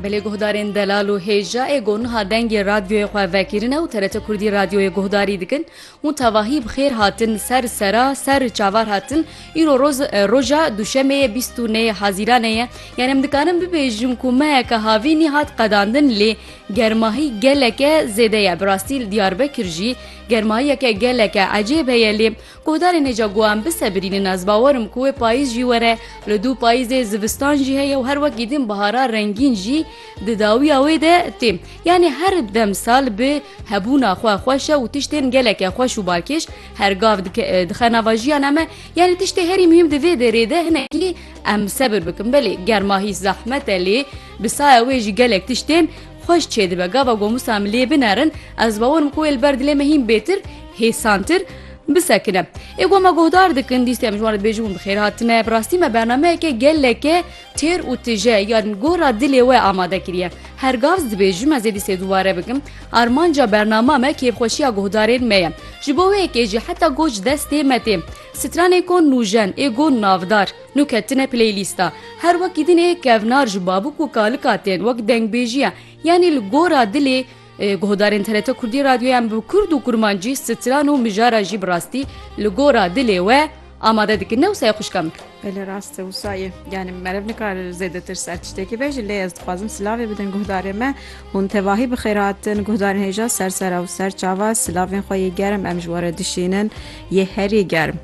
Belê guhdarên delal û hêja ê ku niha dengê radyoyê xwe vekirine û TRT Kurdî radyoyê guhdarî dikin hûn tevahî bi xêr hatin ser sera ser çavar hatin îro roz roja duşemê ye bîst û nê hazîranê ye yani em dikarin bibêjin ku meheke havînî hat qedandin lê germahî geleke zêde ye bi rastî li Diyarbekir jî germahiyeke geleke ecêb heye lê Guhdarê nêca ku em bisebirînin ez bawer im ku wê payîz jî were. Li dû payîzê zivistan jî heye û her wek îdîn bihara rengîn jî di dawiya wê de tê. Yanî her demsal bi hebûna xwe xweş e û tiştên geleke xweş û balkêş her gav dixe nava jiyana me. Yanî tiştê herî muhîm di vê derê de hinekî em sebir bikin. Belê germa hîs zehmet e lê bi saya wê jî gelek tiştên Xweş çêdibe gava gomusa min lê binerin, ez bawer im ku wê li ber dilê me hîn bêtir, hêsantir, bisekine. Ê ku me guhdar dikin, dîstê em ji wan re dibêjin hûn bi xêr hatine, bi rastî me bernameyeke geleke têr û tije ya li gora dilê we amade kiriye. Her gavs dibêjim ez ê dîstê dûbare bikim. Armanca bernama me kêfxweşiya guhdarên me ye. Ji bo wê yekê jî heta goh ji destê me tê. Stranên ku nûjen, ê ku navdar. Nû ketine playlîsta. Her wekî din ê kevnar ji babûk û kalika tên wek dengbêjiya yanî li gora dilê guhdarên TRT Kurdî radyoyan bi kurd û kurmancî stran û mijara jî bi rastî li gora dilê we amade dikin ne wisa ye xwişka min. Belê rast e wisa ye yanî merev nikar zêdetir ser tiştekî be ji lê ez dixwazim silavê bidin guhdarê me hûn tevahî bi xêr hatin guhdarên hêja ser sera û ser çava silavên xwe yê germ em ji we re dişînin yê herî germ.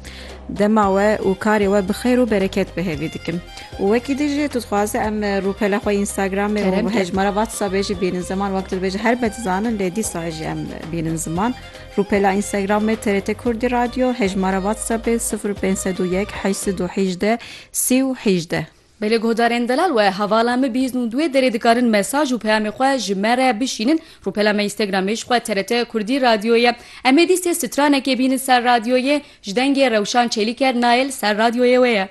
Dema we û karê we bi xêr û bereket bi hêvî dikim. Û wekî din jî tu dixwaze em rûpela xwe Instagramê û bi hejmara WhatsAppê jî bînin ziman wek tu dibêje her me dizanin lê dîsa jî em bînin ziman. Rûpela Instagramê TRT Kurdî Radyo, hejmara WhatsAppê sifir pênc sed û yek heşt sed û hîjdeh sî û hîjdeh. Belê guhdarên delal we hevala min bîst û duê derê dikarin mesaj û peyamê xwe ji me re bişînin rûpela me Instagramê ji xwe TRT Kurdî Radyo ye Em ê dîstê stranekê bînin ser radyoyê ji dengê Rewşan Çelîker Nail ser radyoyê wê ye.